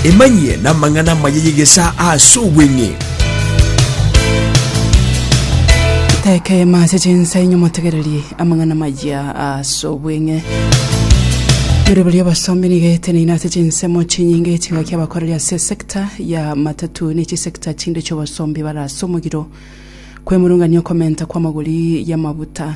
emanyie namang'ana amaya y'egesaa ase obweng'e Teka ema ase chinsa inyo motegererie amang'ana maya ase obweng'e. Bire biri abasomi niga eteneine ase chinsemo chinyinge chingaki abakoreri ase sector ya matatu ne chisector chinde chiobosombi barase omogiro. Kwemurungania okomenta kw'amagori y'amabuta.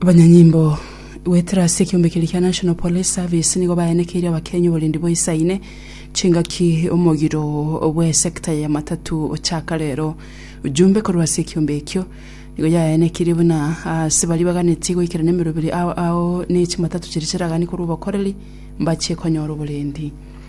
abanyanyimbo goetera ase ekiombe keria kia National Police Service nigo bayanekeire Abakenya oborendi boisaine chingaki omogiro bw'esecta ya matatu ochaka rero. Ojumbe korwa ase ekiombe ekio nigo yayanekeire buna ase baria baganetie goikera nemeroberi ao ao ne chimatatu chiria chiraganie korwa obokoreri mbachie konyora oborendi.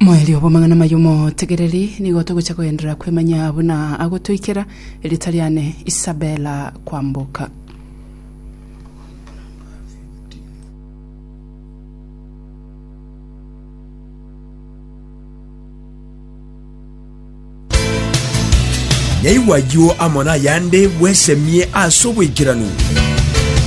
Moerio bw'amang'ana amaya omotegereri nigo togocha koenderera kwemanya buna agotoikera erita riane Isabella Kwamboka. Yaigwa ayio amo nayande bwesemie ase oboikeranu.